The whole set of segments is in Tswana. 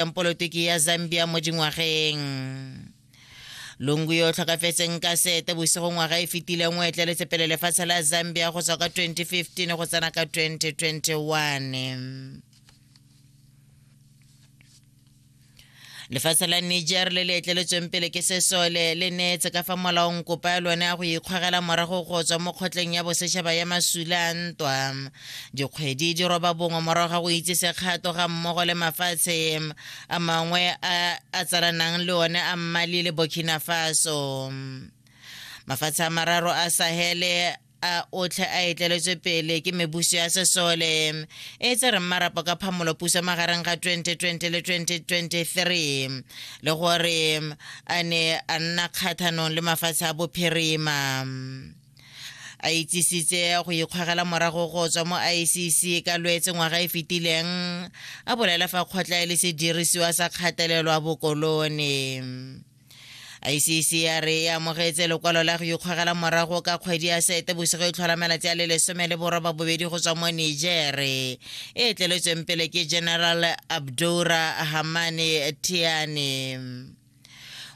polotiki ya zambia mo dingwageng lungu yo o tlhokafetseng ka sete bosigo ngwaga e fetileng o etleletse pele lefatshe la zambia go tswa ka 2015 go tsena ka 2021 lefatshe la niger le le etleletsweng pele ke sesole le neetse ka fa molaong kopa ya lone ya go ikgwagela morago go tswa mo kgotleng ya bosetšhaba ya masula ntwa Dikgwedi di roba bongwe morago ga go itse sekgato ga mmogo le mafatshe a mangwe a a tsalanang le one a Mali le Burkina Faso. Mafatshe a mararo a Sahele a otlhe a etleletswe pele ke mebuso ya sesole e tse reng marapo ka phamolo puso magareng ga 2020 le 2023 le gore a ne a nna kgathanong le mafatshe a bophirima a itsisitse go ikgwagela morago go tswa mo icc ka lwetse ngwaga e fetileng a bolela fa kgotla e le sedirisiwa sa kgatelelo a bokolone icc ya re e amogetse lekwalo la go ikgwagela morago ka kgwedi ya sete bosigo e tlhola malatsi a le lesome le boroba bobedi go tswa mo nigere e tleletsweng pele ke general abdoura hamane tiane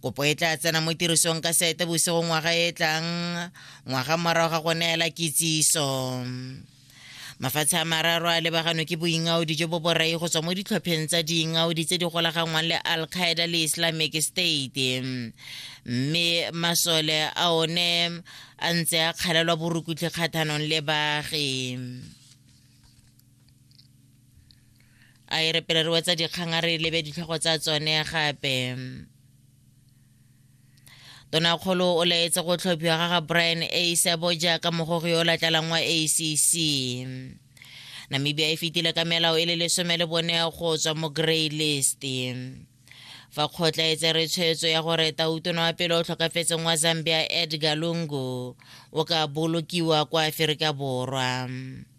kopo e tla tsena mo tirisong ka sete bosigo ngwaga e tlang ngwaga morago ga go neela kitsiso mafatshe a mararo a lebaganwe ke boingaodi jo bo borai go tswa mo ditlhopheng tsa diingaodi tse di golaganngwang le al qaeda le islamic state mme masole a one a ntse a kgalelwa borukutlhi kgathanong le baagi a e re pele re wetsa dikgang a re lebe ditlhogo tsa tsone gape tonakgolo o laetse go tlhophiwa ga ga brian a isebo jaaka mogogi yo o latlalang wa acc namibia e fetile ka melao e le lesome le bone go tswa mo grey list fa kgotla e tsere tshwetso ya gore tautono wa pele o tlhokafetseng wa zambia edgar lungu o ka bolokiwa kwa aferika borwa